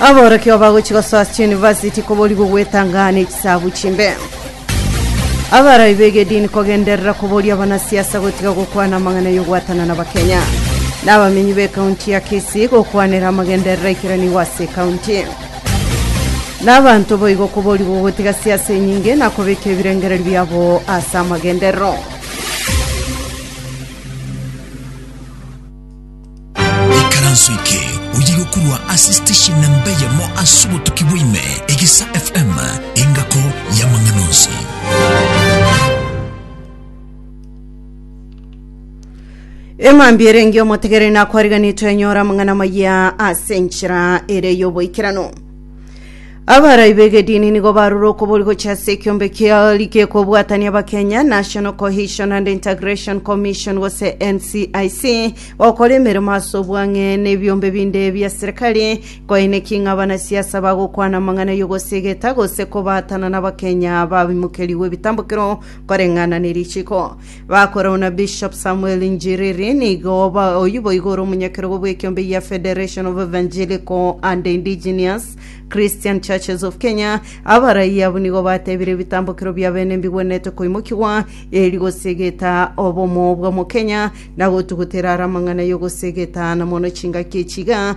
Aborokigwa bagochi gosoa ase chiyunivasiti koborigwe gwetang'ana echisabu chimbe. Abarai b'egedini kogenderera koboria abanasiasa gotiga gokwana amang'ana y'ogwatana n'Abakenya. N'abamenyi b'ekaunti ya Kisii gokwanera amagenderero aikeranigwe ase ekaunti. N'abanto boigo koborigwe gotiga siasa enyinge na kobeka ebirengererio biabo ase amagenderero. Ekaranso eke oyegokorwa ase station na mbe yamo ase obotuki bwaime egesa FM engako y'amang'ana onsi. eng'ambi ere engiya omotegereri nakwariganetwe enyora amang'ana maya ase enchera ere y'oboikerano Abarai b'egedini nigo barure okobori gochia ase ekiombe kia ligi ekobwatania abakenya National Cohesion and Integration Commission gose NCIC gokora emeremo ase obwang'e na ebiombe binde bia serikali koineki ng'a abanasiasa bagokwana amang'ana y'ogosegeta gose kobaatana n'abakenya babimokerigwe ebitambokero koreng'ana ne richiko Bakora buna Bishop Samuel Njiriri nigo oba oyio boigo ore omonyakerogo bw'ekiombe gia Federation of Evangelical and Indigenous Christian Churches of Kenya. Abarai abo nigo batebire ebitambokero bia bene mbigwenerete koimokigwa eri gosegeta obomo bw'Omokenya na gotugutera are amang'ana y'ogosegetana mono chingaki echiga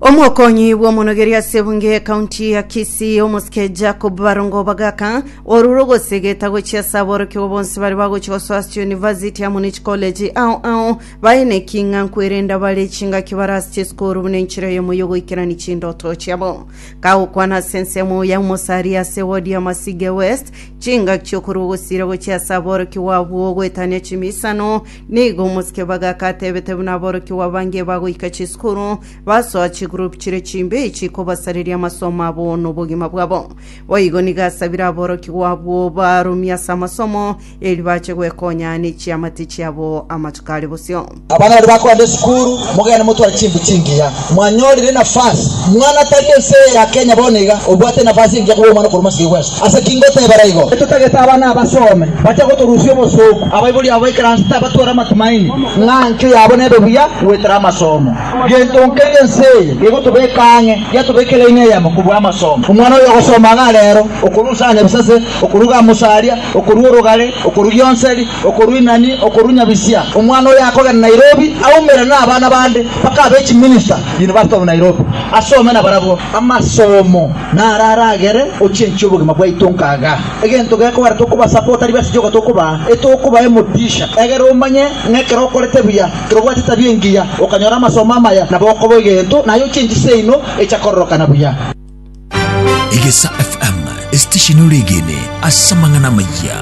Omokonyi bw'omonogeri ase ebunge y'ekaunti ya Kisii omosike Jacob Barongo Bagaka orure ogosegeta gochia ase aborokigwa bonsi bare bagochi gosoa ase University ya Munich College ao ao baye neking'anku erende abare chingaki bare ase chisukuru buna enchera yemo yogoikerani chindoto chiabo kagokwana ase ensemo ya omosari ase wodi ya Masige West chingaki chiokorwa ogosira gochia ase aborokigwa abwo goetania chimiisano Nigo omosike b'agaaka ateebete buna aborokigwa bange bagoika chisukuru, basoa chigroup chiria chimbe chikobasareria amasomo abo nobogima bwabo. Boigo nigo asabire aborokigwa abwo barumie ase amasomo, erio bache gwekonya nechiamate chiabo amatuko are bosio. Abana baria bakoenda esukuru, mogende motware chimbu chingiya. Mwanyorire nafasi, mwana tari ense eye ya Kenya bono iga, obwate enafasi engiya koba omwana okorwa masiga igwesa. Ase ki ngotebera igo? Totagete abana abasome, bache gotorusia obosooku. Abaibori abo baikaranse tabatware amatumaini ng'a enchwe yabo nebe buya goetera amasomo. Gento nkeria ense eye gegotobeka ang'e, yatobeka eraini eyemo kobua amasomo. Omwana oyo ogosoma iga rero, okorusia aanya bisase, okoruga amosaria, okorua orogare, okorugia onseri, Okorwa Inani, okorwa Nyabisia, omwana oyo akogenda Nairobi aumere nabana bande mpaka abe chiminista University of Nairobi asome nabarabwo. Amasomo naro aragere ochenche obogima bwaito nkaga. Egento gekogera tokobasapota tari besa sioka tokobaa, etokobaa emotisha. Egera omanye ng'a ekero okorete buya, ekero obwate etabia engiya, okanyora amasomo amaya, nabo okoba egento, naye ochenchi seino echa kororokana buya. Egesa FM, esitesheni oregene ase amang'ana amayia.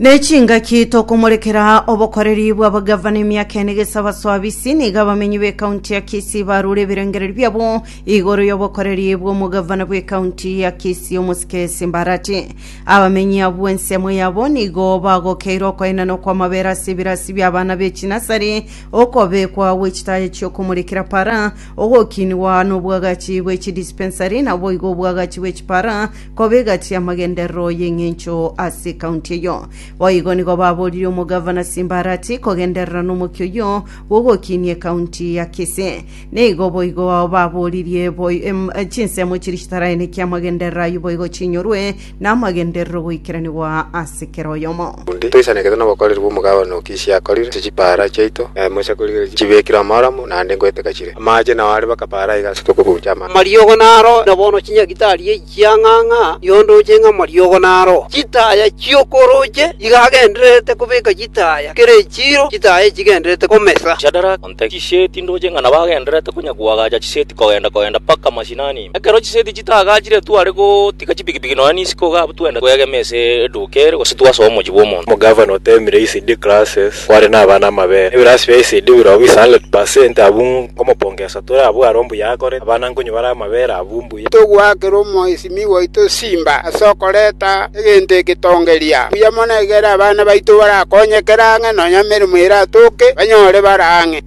nechingaki tokomorekera obokoreri bw'abagavana emiaka ene gesa baswabisi niga abamenyi b'ekaunti ya kisii barure ebirengereri biabo igoro y'obokoreri bw'omogavana bw'ekaunti ya kisii omosike simbarati abamenyi abwo ensemo yabo nigo bagokeire okoenana okw'amabera ase ebirasi by'abana b'echinasari okobekwa gw'echitaya chi'okomorekera para Ogokinigwa nobwagachi bwe chidispensari naboigo obwagachi bwe chipara koba egati y'amagenderero y'eng'encho ase ekaunti eyio. Boigo nigo baboririe omogavana Simbarati kogenderera nomokia oyio bw'ogokinia ekaunti ya Kisii. Nigo boigo baboririe boi, em, chinsemo chiria chitaraeneki amagenderero ayio boigo chinyorwe namagenderero goikeranigwa ase kera oyomo. Onde toisanekete nobokoreri bw'omogabane o Kishi akorire, ase chipaara chiaito, na emo chiakorigire chibekirwe amaaramu, naende ngoeteka chire. Amaache nao are baka paara iga ase tokobuucha amache. Amariogo naro, na bono chinyagitari echiang'ang'a, yondooche ng'a amariogo naro. Chitaaya chi'okorooche chigagendererete kobeka chitaaya, kera echiiro chitaaya echigendererete komesa. Shadaraka, Nte chiseti ndoche ng'a nabagendererete konya koagacha chiseti kogenda kogenda mpaka mashinani. Ekero chiseti chitaagachire tware gotiga chipigipigi nonya n'isiko iga abwo twende kwegema ase eduuka ere gose twasoe omochie bw'omonto. Omogavana oteemire ECD classes kware n'abana amabere. Ebirasi bia ECD birogo is 100% abwo nkomopongesa tore abwo are ombuya akorete. Abana nkonywa bare amabere abwo mbuya. Togoakera Omoisimi oito simba ase okoreta egento egetongereria. Mbuya mono egere abana baito barakonyekere ang'e, nonya emeremo eratoke, banyore bare ang'e.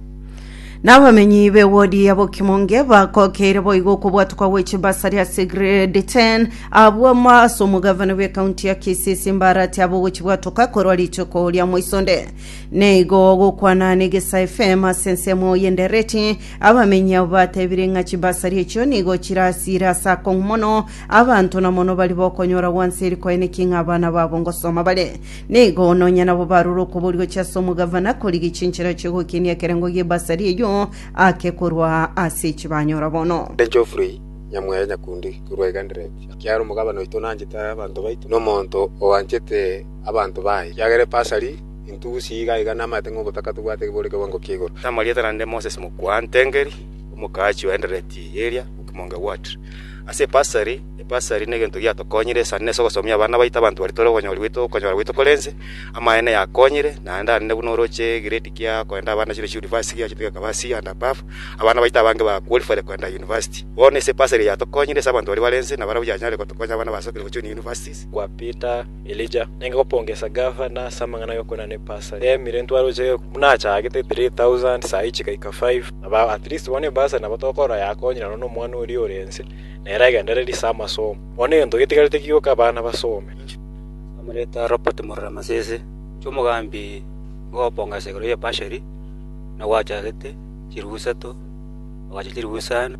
Na abamenyi be ward ya Bokimonge bakokeire boigo okobwatwa kwa gwe chimbasari ase grade 10 abwo amo ase omogavana bwe county ya Kisii ase embarati abo gochibwatoka korwa rituko ria moisonde. Neigo gokwana negesae FM ase ensemo y'endereti Abamenyi abwo batebire ng'a chimbasari echio nigo chirasiire ase akong'u mono, abanto na mono baria bokonyora gwanseria koene ki ng'a abana babo ngosoma bare. Nigo nonya nabo barure okobori gochia ase omogavana korigia chinchera chi'ogokenia ekerengo gi'embasari eyio ake korwa ase echi banyora bono. Ere Geoffrey Nyamweya Nyakundi korwa Igandereti akiare omogabana oito nanchete abanto baito, na omonto oanchete abanto baye, ekiagera epasari Intugusi iga iga namaete ng'ogotaka tobwate kebori kewango kia igoro. Namarieta naende Moses Mokwaantengeri, omokaachi o Endereti eria Okimong Ward. Ase ebasari, ebasari negento giatokonyire isani na ase ogosomia abana baito abanto baria tore okonyora goito okonyora goito korense, amaene yakonyire, naende arende buna oroche egrade kia koenda abana chire chiunivasti giachete gekaba C and above, abana baito abange ba qualified koenda university. Bono ase ebasari eye yatokonyire ase abanto baria barense nabarabwo yanyare gotokonya abana basokire gochuni universities. Kwa Peter Elija, nenge gopongesa gavana ase amang'ana ay'okorera nebasa yaemire ntware gochia egekumi, buna achagete 3,000 saa echi gaika 5. Nabo at least bono ebasa nabo tokorora yakonyire nonya nomwana oria ore ense, nere agendererie ase amasomo. Bono egento getigarete ki goika abana basome? Bamoreta Robert Murora Masese, inche omogambi nkogopongesa igoro y'ebashery, buna gwachagete chiribu isato, ogachia chiribu isano.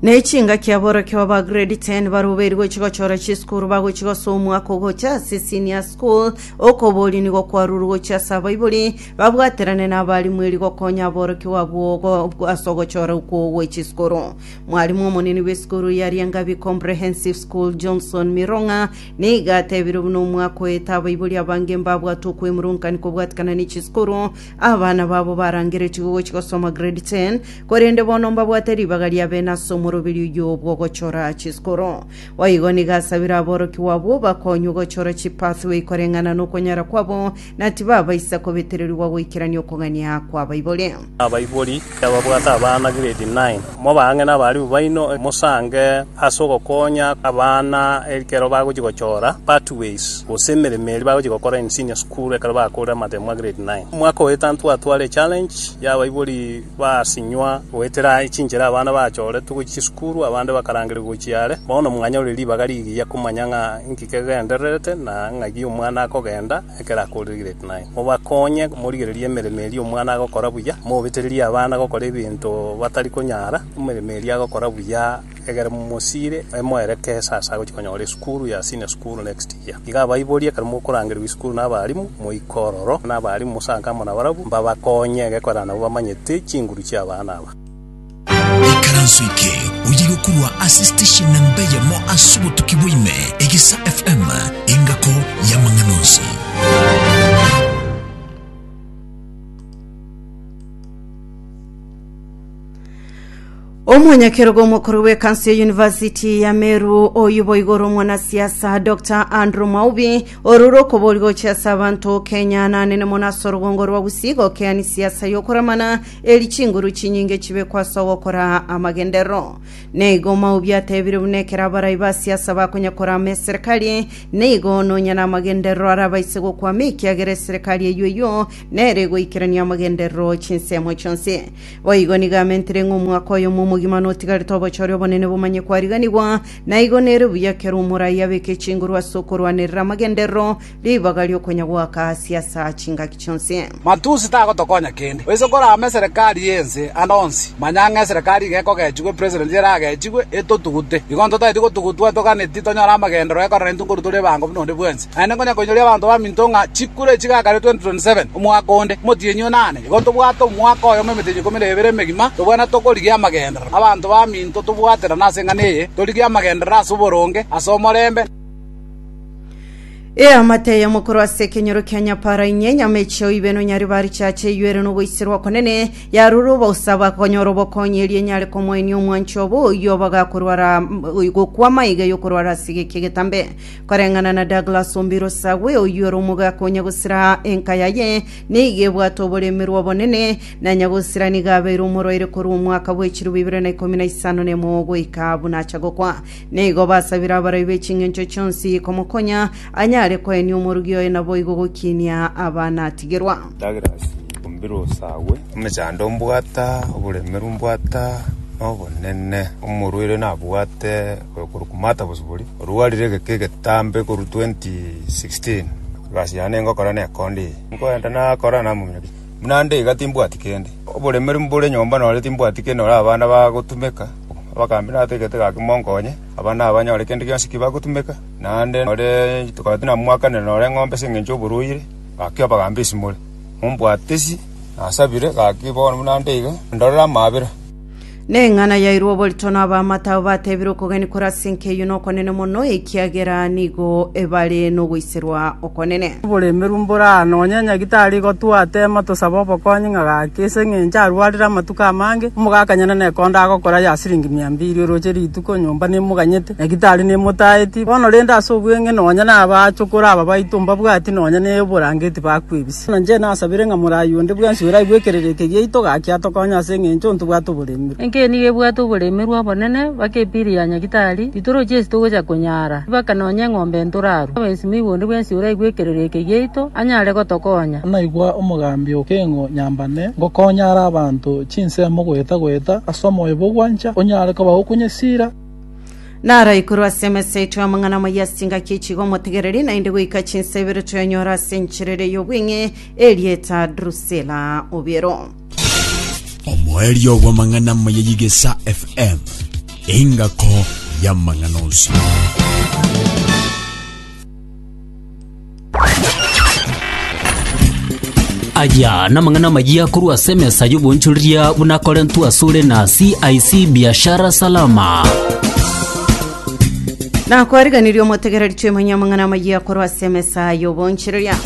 Ne chingaki aborokia baba grade 10 barubeiri gochi gochora chisukuru bagochi gosa omwaka ogocha ase senior school okoboria nigo kwaruru gochi ase abaibori babwaterane na abarimu eri gokonya aborokia babo ogo- ase ogochora okwo gwe chisukuru mwarimu omonene bw'esukuru ya riangabi comprehensive school johnson mirong'a niga atebire buna omwaka oete abaibori abange mbabwate okwemurunka nikobwatikana ne chisukuru abana babo barangeretigwe gochi gosoma grade 10 Korende bono mbabwate ribaga ria bene ase omoroberio oyio bw'ogochora chiskoro. Boigo nigo asabire aborokigwa abwo bakonywe gochora chipathway koreng'ana nokonyara kwabo, na tibabaisa kobetererigwa goikerania okogania kw'abaibori. Abaibori kebabwate abana grade nine, mobe ang'e nabarimu baino, mosange ase ogokonya abana ekero bagochia gochora pathways gose emeremo eria bagochia gokora in senior school ekero bakoorire amateemwa grade nine. Omwaka oetano twatwara echallenge y'abaibori. Basinywa goetera chinchera abana bachoretwe gochia chisukuru, abande bakarangeria gochia are. Bono mwanyore ribaga rigiya komanya ng'a inki kegendererete na ng'aki omwana akogenda ekero akoregete. Naende mobakonye morigererie emeremo eria omwana agokora buya, mobetererie abana gokora ebinto batari konyara emeremo eria agokora buya. Ekero mosiire, moereke esasa gochia konyora esukuru ya senior school next year. Iga abaiborie ekero mokorangerigwa esukuru na abalimu, moike ororo na abalimu mosanke amo nabarabwo, mbabakonye egekorera nabo bamanyete chinguru chia abana aba. Ekaranso eke oyiga korwa ase steshen na mbe yamo ase obotuki bwa ime, Egesa FM, engako y'amang'ana onsi. Omonyakerogo omokoro bw'ekanso ya yunivasiti ya Meru oyio boigo ore omwanasiasa Dr Andrew Mwaubi orure okobori gochia ase abanto Kenya nanene mono ase orogongo rwa Gusii gokeani siasa y'okoramana eri chinguru chinyinge chibekwa ase ogokora amagenderero. Neigo Mwaubi atebire buna ekero abarai ba siasa bakonya korama eserekari neigo nonya na amagenderero arabaise gokwama ekiagera eserekari eyio eyio nere egoikerania amagenderero chinsemo chionsi. Boigo nigo amentire ng'a omwaka oyomo omogima notigarete obochore obonene bomanye kwariganigwa, na igo nere buya ekero omoraai abeke chinguru ase okorwanerera amagenderero, ribaga ri'okonyagoaka ase asa chingaki chionsi. Matusi tagotokonya kende. Oise korame eserekari y'ense ande onsi. Manya ng'a eserekari iga ekogechigwa epresident eragechigwe etotugute. Igo ntotageti gotugutwa toganeti tonyore amagenderero ekorera intwe nkoru tore ebango buna onde bwensi. Naende ngonya koinyoria abanto baminto ng'a chikure echi gakaretwe 27 omwaka onde, omotienyi o nane. Igo ntobwate omwaka oyomo emetienyi ikomi na ebere emegima, tobwenerete tokorigia amagenderero. Abanto baminto tobwaterane ase eng'ana eye, torigie amagenderero ase oboronge, ase omorembe, Eamate eye mokorwa ase ekenyoro kia nyapara inye, nyama echio ibe nonyare ba richache eyuere nogoiserwa okonene, yarure obosabu akonyora obokonyi erio enyare komoenia omwancho obo oyio obogakorwara gokwa amaiga yokorwara ase egeki egetambe. Koreng'ana na Douglas Ombirosagwe oyio ore omogaka o Nyagusira enka yaye nigo ebwate oboremerwa obonene, na Nyagusira nigo abeire omorwaire korwa omwaka bwe chilifu ibere na ikomi na isano na emo goika buna acha gokwa. Nigo basabire abarai be ching'encho chionsi komokonya anyare koenia omorugi oye naboigo gokinia abana atigerwa. Douglas Ombirosagwe, Omochandoo mbwata oboremerwa mbwata nobonene, omorwaire nabwate oyo korokwa Martha Bosibori, orwarire egeke egetambe korwa 2016. Egasi yane ningokora nekonde eye. Nkoenda nakora namominyokia. Buna nde iga timbwati kende. Oboremeri mbore nyomba nonye timbwati kende nonye abana bagotumeka. Bakambia nate egete gaki monkonye, abana aba banyore kende gionsi ki bagotumeka. Naende nore tokaba tinamwakanire nore eng'ombe ase engencho y'oborwaire, gaki abagambia esimore. Mombwate isi, nasabire gaki bono buna nde iga, ndorere amaabera. Neng'ana yairwe oborito n'abamate abo batebire okogania kore ase enka eyio nokonene mono, ekiagera nigo ebare nogoiserwa okonene. Oboremeru mbore aa, nonya nyagitari igo twatema tosabe obokonyi ng'a gaki, ase eng'encho arwarire amatuko amange, omogakanyene nekondo agokora ya siringi mia mbiri, oroche rituko, nyomba nemoganyete, nyagitari nemotaeti. Bono rende ase obweng'e nonya nabachokoro aba baito mbabwati nonya neoborangeti bakwebisa. Ase inche nasabire ng'a moraai onde bwensi oira aigwe ekerereke giaito, gaki atokonye ase engencho ntibwate oboremerwa. Enke nigo ebwate oboremerwa obonene, mpaka epiri ya nyagitari, titorochi esi togocha konyara, mpaka nonya eng'ombe ntorarwe. Oboinsimo aigwe onde bwensi oira aigwe ekerereke giaito, anyare gotokonya. Naigwa omogambi okeng'o nyambane, ngokonyare abanto chinsemo goeta-goeta ase omoyo bogwancha, onyare kobagokunya esira. Naro ikoro ase emesa yaito amang'ana amaya ase chingaki echigo omotegereri, naende goika chinsa ibere toyanyora ase enchera ere y'obweng'e erieta Drusila obiero. omoerio bw'amang'ana amaya y'igesa fm engako y'amang'ana onsi Aya namang'ana amayia korwa ase emesa y'obonchoreria buna Korinto asore na CIC Biashara Salama. nakwariganirie omotegereri toimanye amang'ana amayia korwa ase emesa y'obonchereria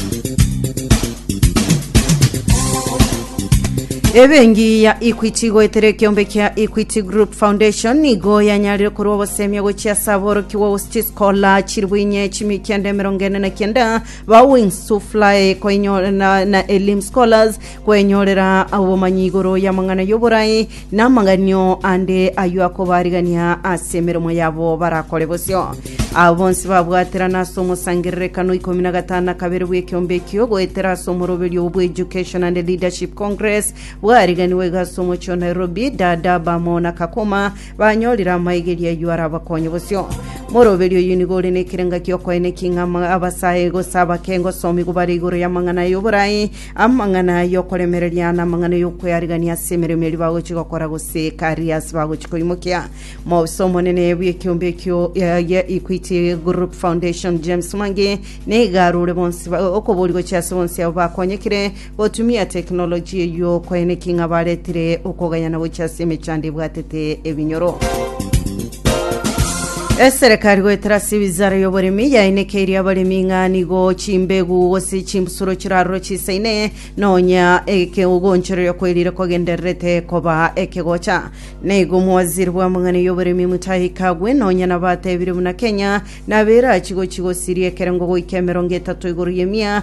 ebengi ya equity igoetera ekiombe kia equity group foundation igo yanyarire korwa obosemia gochia ase aborokigwa Kola chiribu inye chimi kende emerongo ene na kenda ba wings to fly koinyora na, na elim scholars kwenyorera obomanyi igoro y'amang'ana y'oborai na amaganio ande aywo akobarigania ase emeremo yabo barakore bosio abo bonsi babwaterana ase omosangererekano ikomi na gatano na kabere bw'ekeombe ekio goetera ase omoroberio obwo education and leadership congress bwariganiwe iga ase omochie o nairobi dada bamo na kakuma Banyorire amaigerio ayio arabakonye bosio. Moroberi oyio nigo ore nekerenga gi'okoenekia king'ama abasae, gose abake, gose omigo bare igoro y'amang'ana y'oborai, amang'ana y'okoremereria, na amang'ana y'okwearigania ase emeremo eria bagochi gokora gose karia ase bagochi koimokia. Mobisa omonene bw'ekiombe ekio ya- ya Equity Group Foundation James Mwangi nigo arure bonsi ba- okobori gochia ase bonsi abo bakonyekire Gotumia teknolojia eyio kwaene ki ng'a baretire okogaya na gochia ase emechando ebwatete ebinyoro? Eserekari goetera ase ewizara y'oboremi yainekeirie abaremi ng'a nigo chimbegu gose chimbusuro chirarorwe chisaine nonya ekeogonchoreria kwerire kogendererete koba ekegocha. Naigo omowaziri bw'amang'ana y'oboremi Mutahi Kagwe nonya nabatebirie buna Kenya nabo erachi gochi gosiria ekerengo goika emerongo etato igoro y'emia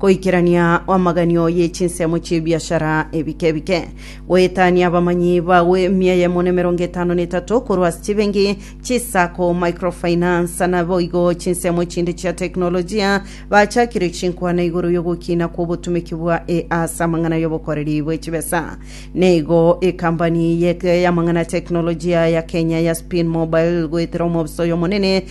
Goikerania amaganio ye chinsemo chi'ebiashara ebike ebike. Goetania abamanyi bao emia eyemo nemerongo etano netato korwa ase chibengi, chisako, microfinance, na boigo chinsemo chinde chia teknolojia, bachakire chinkwana igoro y'ogokina kw'obotumeki bwa A ase amang'ana y'obokoreri bwe chibesa. Neigo ekambani ye- y'amang'ana ya teknolojia ya Kenya ya Spin Mobile goetera omobisa oyomonene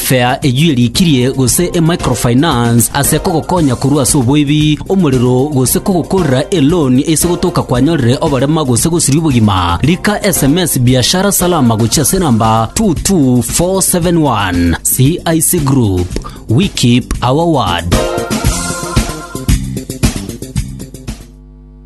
Fea eyio erikirie gose emicrofinance ase kogokonya korwa ase oboibi, omorero, gose kogokorera eloni ase gotoka kwanyorire oborema gose gosiria obogima. Rika sms Biashara Salama gochia ase namba 22471. CIC Group, we keep our word.